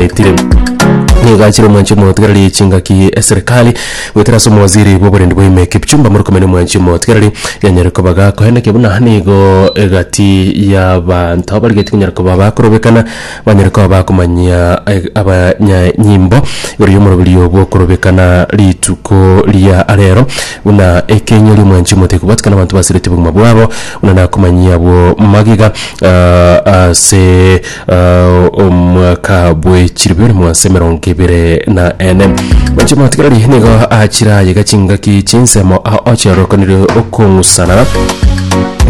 etire nigo achire omwanchi omotigareri echingaki eserikali goetera ase omowaziri bw'oborindi bwa ime kipchumba murkomen omwanchi omotigareri yanyare koba gakoeneke buna nigo egati y'abanto abarigetie konyara koba bakorobekana banyare koba bakomanyia eh, abanyanyimbo igoro y'omoroberio bw'okorobekana rituko ria arero buna ekeinyo ri'omwanchi omotebi kobwatikana abanto basirete obogima bwabo buna nakomanyia abwo magega ah, ase omwaka bwe chiribere mwansa emerongo ebere na ene oche matigarari nigo achirayega chingaki chinsemo a ochiarokanire okong'usana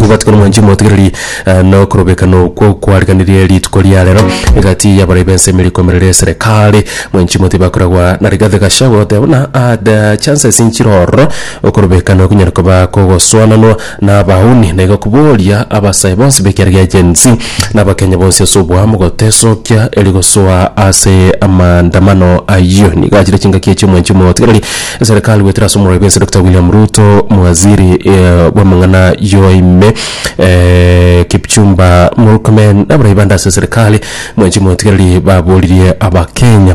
gwatikana mwanchi motigarari nokorobekana okwo kwariganirie rituko ria rero egati yabarai bense emeri komerere eserekari mwanchi moti bakoragwa na rigathe gashagwa goteba buna ada chances nchirororo okorobekana okonyara koba kogoswananwa na abauni, na igo kobooria abasae bonsi b'ekiara gia Gen Z na Abakenya bonsi ase oboamo gotesokia eri gosoa ase amaandamano ayio. Nigo achire chingaki echio omwanchi omotigereri eserekari goetera ase omorwai bw'ense Dokita William Ruto, mwaziri eh, bw'amang'ana yoa ime eh, Kipchumba Murkomen na abarai bande ase eserekari mwanchi omotigereri baboririe Abakenya.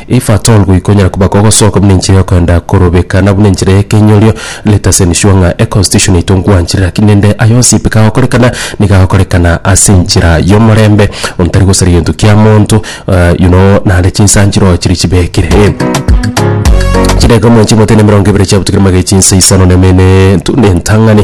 If at all goikonyara koba kogosoka buna enchera yokoenda korobeka na buna enchera y'ekenyorio, let us ensure ng'a econstitution yaito nkwanchire lakini rende aye onsi pi kagokorekana niga agokorekana ase enchera y'omorembe ontari gosari gento kia monto you know naende chinsanchiro oo chiri chibekire eh. Chidakika omonto chimotene emerongo ebere chiabutekire magega chinsa isano na eme ne entang'ani.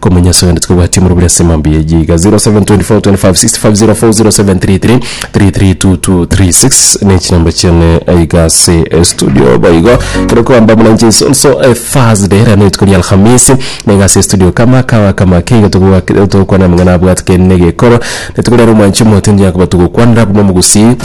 Komanya ase ogende tikobwati omoro buri ase emambi eye iga 0724256504 ne chinamba chiane iga ase estudio boigo kero kwamba muna inche nsonso eh, Thursday rero rituko ria Alhamisi na iga ase estudio kama kawa kama keiga togokwana amang'ana abwatike negekoro Netikorera omwanchi omo tindi yakoba togokwanera abwo momogusii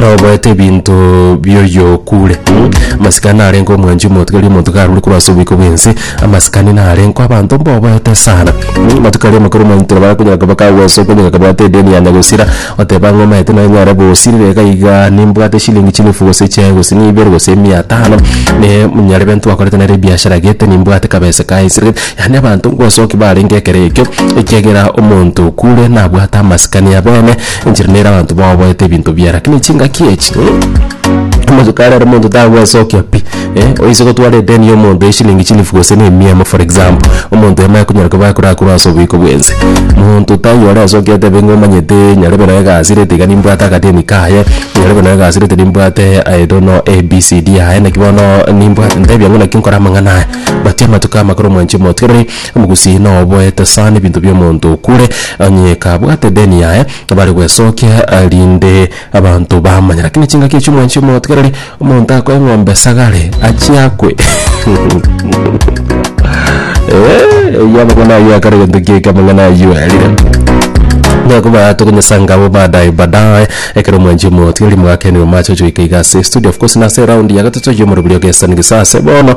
nabo boete ebinto bioyokure mm? amasikani narenge omwanchi omotigari omonto karure korwa ase obiko bwense amasikani narenko abanto mboboete sana mm? amatuko aria amakoro omwanchi toro barakonyora koba kagosoka onye kakabwate edeni yane gosira oteba ng'a omaete naye nyare gosirire iga iga nimbwate shilingi chielfu gose chiaye gose na ibere gose mia tano ne nyarebe ntwakorete nere ebiashara gete nimbwate kabesa kaye nsire. Yaani abanto ngosoki barenge ekero ekio, ekiagera omonto okure nabwate amasikani abene, enchera nere abanto baoboete ebinto biaye. Lakini chingaki echi, mh, amatuko arero omonto tagwesokia pi, eh, oise gotwara edeni ya omonto ya eshilingi chilifu gose na emia emo for example, omonto yamanye konyora koba akorakora ase oboiko bwense. Monto taiyo ore asoki atebe ng'a omanyete nyarebe nonye egasireti iga nimbwate akadeni kaye, nyarebe nonye egasireti nimbwate I don't know ABCD yaye, naki bono nimbwate ntebi ang'o naki nkore amang'ana aya. Batia amatuko amakoro mwanche motigere omogusii noboete sana ebinto bi'omonto okure, onye kabwate deni yaye bare gwesokia rinde abanto bamanya. Lakini chingaki echio mwanche motigereri, omonto akoe eng'ombe esagare achie akwe. Eh, oyio amang'ana ayio akare egento kieke amang'ana ayio arire. Nakoba tokonyesanga abo baadaye baadaye ekero mwanche motigereri mwakeni omache ochoika iga ase estudio of course nase eround ya gatato y'omorobiri ogesani gisase bono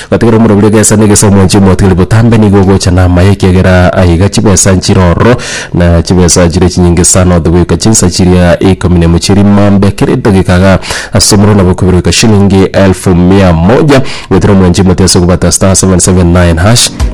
Gatigara omoraburi egesa na egesa omonche omotigari botambe nigo ogocha namaye ekiagera aiga chibesa nchire ororo na chibesa chire chinyinge sana otogoika chinsa chiria ikomi na emo chiria imambe kera edageka iga ase omorero nabo okobere goika shilingi elfu mia moja goetera omonche omotiga ase okobata *779#.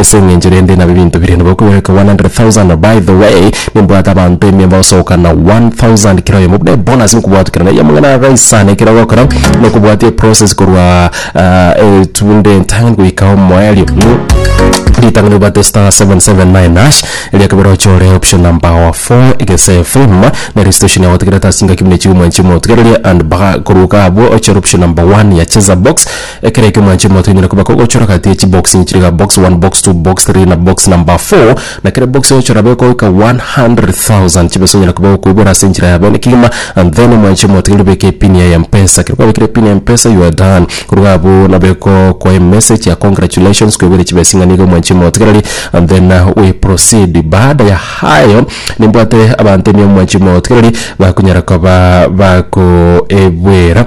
Ase engencho rende nabe ebinto biria nigo okogweka 100,000 by the way nimbwate abanto emiomba gosoka na 1000 kera oyomo buna ebonus nkobwatwa kera naiyo amang'ana agaisana ekero ogokora na okobwatia eprocess korwa etuunde entang'ani goika omoerio ritang'ani obwate star 779 hash erio ekebere ochore option number our four egese efirm na registration yago otegerete ase engaki buna echiko mwancha omotigererie and baga korwa iga abwo ochore option number one ya cheza box Ekero ekio mwanche motonyora koba kogochora gati ye chibox inchiri iga, box one, box two, box three, na box number four, na kera ebox oyochora abe goika 100,000 chibesa onyare koba okoibora ase enchera ya bene kegima and then mwanche motonyora obeke epin ya Mpesa. Ekero kwabekire epin ya Mpesa you are done. Koruga abwo nabo egokoa emessage ya congratulations kweboire chibesa ing'ana iga mwanche motigereri and then we proceed. Baada ya hayo nimbwate abanto ime mwanche motigereri bakonyara koba bakoebwera